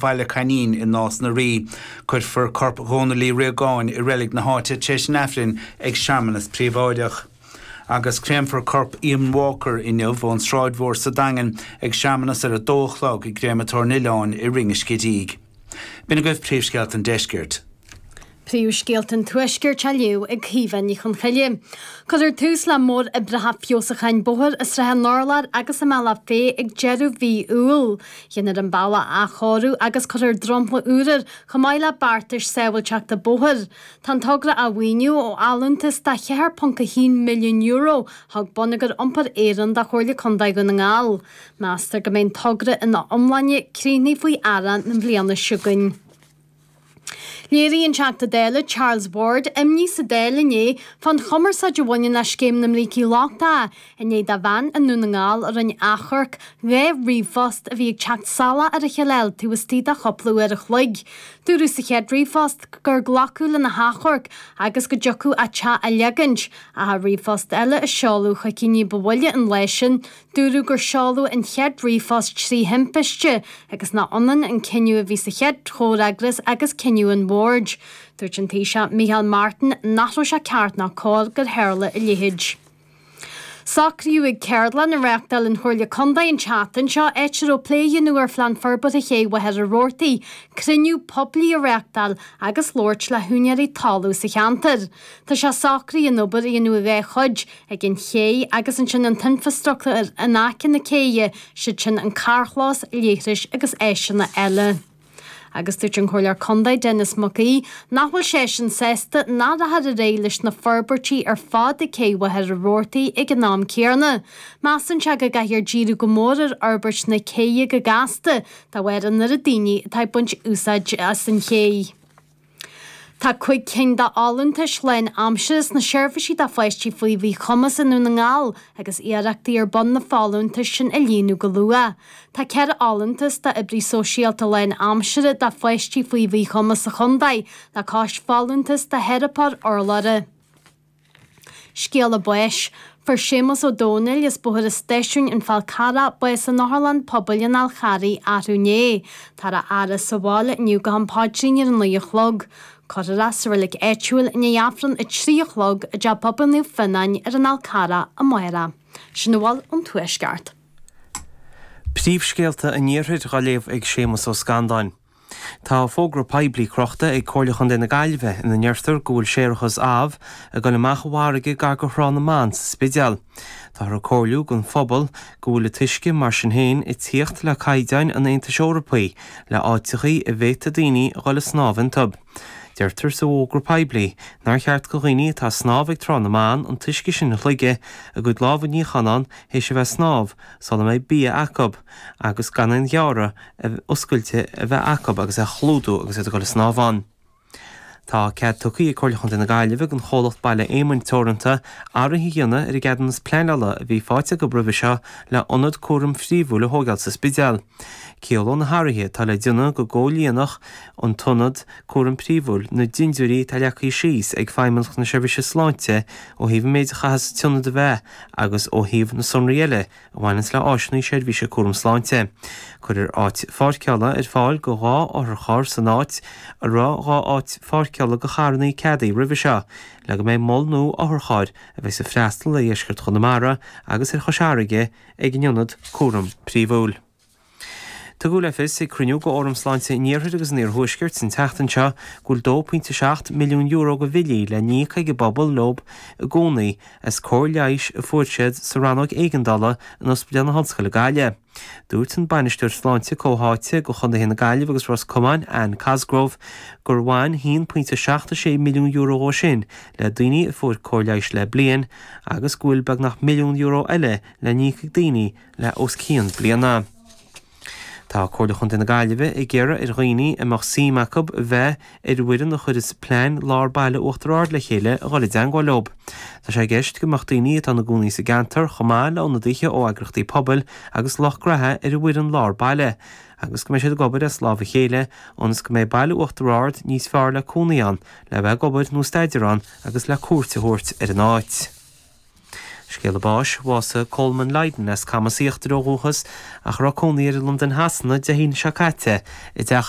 Bhaile Coimín i Nás na Rí. Cuirfear corp Dhónaill Uí Riagáin i reilig na háite tar éis an Aifrinn ag searmanas príobháideach. Agus créamfar corp Eamonn Walker inniu ón Sráid Mhór sa Daingean ag searmanas ar a dó a chlog i gCréamatóir an Oileáin i Rinn an Scidígh. B'in agaibh príomhscéalta an Deiscirt. Príomhscéalta an Tuaiscirt á léamh ag Caoimhe Ní Chonchoille. Cuirfear tús le móroibreacha feabhsúcháin bóthair i Srath an Urláir agus i mBealach Féich ag deireadh mhí Iúil. Dhéanfar an bealach a athchóiriú agus cuirfear dromchla úr air chomh maith le beartais sábháilteachta bóthair. Tá an togra á mhaoiniú ó allúntas de €4.1 milliún a thug Bonneagar Iompair Éireann do Chomhairle Contae Dhún na nGall. Meastar go mbeidh an togra ina iomláine críochnaithe faoi dheireadh na bliana seo againn. Léirigh an Teachta Dála Charles Ward imní sa Dáil inné fán chumarsáid a bhaineann le scéim na mbrící lochtacha i ndiaidh do bhean i nDún na nGall a rinne achomharc dhá ríomhphost a bhí ag teacht salach ar a chéile a fháil taobh istigh de chúpla uair a chloig. Dúradh sa chéad ríomhphost gur glacadh lena hachomharc agus go dtiocfadh a teach a leagaint ach i ríomhphost eile a seoladh chuici ní ba mhoille an lae sin Dúradh gur seoladh an chéad ríomhphost trí thimpiste, agus nach ionann an cinneadh a bhí sa chéad chomhfhreagras agus cinneadh an bhoird. Dúirt an Taoiseach Micheál Martin nach raibh sé ceart ná cóir gur tharla a leithéid. Socraíodh ag ceardlann a reáchtáil an Chomhairle Contae an tseachtain seo áit a raibh plé á dhéanamh ar Phlean Forbartha Ché Mhachaire Rabhartaigh, cruinniú poiblí a reáchtáil agus labhairt le húinéirí talaimh sa cheantar. Tá sé socraithe an obair a dhéanamh i dhá chuid, ag an chéidh agus ansin an t-infrastruchtúr in aice na céidhe, siad sin an carrchlós, leithris agus áiseanna eile. Agus dúirt an Comhairleoir Contae, Denis Mac Aoidh, nach bhfuil seisean sásta nach rachfar ar aghaidh leis na forbairtí ar fad ag Céidh Mhachaire Rabhartaigh ag an am céanna. Measann sé go gcaithfear díriú go mór ar fhorbairt na céidhe go gasta, de bharr an oiread daoine atá ag baint úsáid as an chéidh. Tá cúig cinn de fholúntais lánaimseartha sna seirbhísí do pháistí faoi mhíchumas i nDún na nGall agus iarrachtaí ar bun na folúntais sin a líonadh go luath. Tá ceithre fholúntas d'oibrí sóisialta lánaimseartha do pháistí faoi mhíchumas sa chontae le cois folúntas do theiripeoir urlabhra. Scéala Báis, Fuair Séamus Ó Domhnaill as Bóthar an Stáisiúin, An Fál Carrach, bás in Otharlann Pobail an Fháil Charraigh arú inné. Tá a fhaire sa bhaile inniu go ham páidrín ar a naoi a chlog. Cuirfear é sa reilig áitiúil i ndiaidh Aifreann a trí a chlog i dTeach Pobail Naomh Fionnáin ar an Fhál Carrach amárach. Sin a bhfuil ón Tuaisceart. Príomhscéalta an Iarthair dhá léamh ag Séamus Ó Scanláin. Tá fógra poiblí crochta ag Comhairle Chontae na Gaillimhe ina ndeirtear go bhfuil séarachas, amh, ag dul amach i bhfarraige gar go Thrá na mBan sa Spidéal. Táthar ag comhairliú don phobal go bhfuil an t-uisce, mar sin féin, ag tíocht le caighdeáin an Aontais Eorpaí le áiteachaí a bhféadfadh daoine a dhul ag snámh iontub. Deirtear sa bhfógra poiblí nár cheart go dhaoine atá ag snámh ag Trá na mBan an t-uisce sin a shloigeadh, a gcuid lámha a níochán thar éis a bheith ag snámh, sula mbeidh bia acub, agus gan aon ghearradh oscailte a bheith acu agus é a chlúdú agus iad ag dul ag snámh ann. Tá cead tugthaí ag Comhairle Chontae na Gaillimhe don chomhlacht Baile Éamoinn Teoranta athruithe a dhéanamh ar an gceadúnas pleanála a bhí faighte acu roimhe seo le hionad cúraim príomhúil a thógáil sa Spidéal. Ciallóidh na hathruithe atá le déanamh go gcomhlíonfadh an t-ionad cúraim príomhúil na dindiúirí atá leagthaí síos ag Feidhmeannacht na Seirbhíse Sláinte ó thaobh an méid a chaithfeas an t-ionad a bheith agus ó thaobh na sonraí eile a bhaineas le áiseanna seirbhíse cúram sláinte. Cuirfear áit pháirceála ar fáil go dhá otharcharr san áit a raibh dhá áit pháirceála go charrannaí ceadaithe roimhe seo, le go mbeidh mol nua otharcharr a bheidheas ag freastal ar dheisceart Chonamara agus ar Chois Fharraige ag an ionad cúraim príomhúil. Tugadh le fios ag cruinniú go Fhóram Sláinte an Iarthair agus an Iarthuaiscirt an tseachtain seo go bhfuil €2.7 milliún go bhillí le n-íoc ag an bpobal leo i gcónaí as cóir leighis a fuair siad sa Rannóg Éigeandála in Ospidéal na hOllscoile, Gaillimh. Dúirt an Bainisteoir Sláinte Comhtháite go Chontaetha na Gaillimhe agus Ros Comáin, Ann Cosgrove, gur bhain €1.76 milliún dhó sin le daoine a fuair cóir leighis le bliain agus go bhfuil beagnach milliún euro eile le n-íoc ag daoine a le os cionn bliana. Tá Comhairle Chontae na Gaillimhe ag iarraidh ar dhaoine a mbeadh suim acub a bheith ar an bhfoireann a chuireas Plean Lár Baile Uachtar Ard le chéile a dhul i dteangmháil leo. Tá sé i gceist go mbeadh daoine atá ina gcónaí sa gceantar chomh maith le ionadaithe ó eagrachtaí pobail agus lucht graithe ar an bhfoireann lár baile agus go mbeidh siad ag obair as lámh a chéile ionas go mbeidh Baile Uachtar Ard níos fearr le cónaí ann, le bheith ag obair nó staidéar ann agus le cuairt a thabhairt ar an áit. Scéala báis, bhásaigh Colman Lydon as Camas Íochtar ó dhúchas ach a raibh cónaí air i Londain Shasana Dé hAoine seo caite i dteach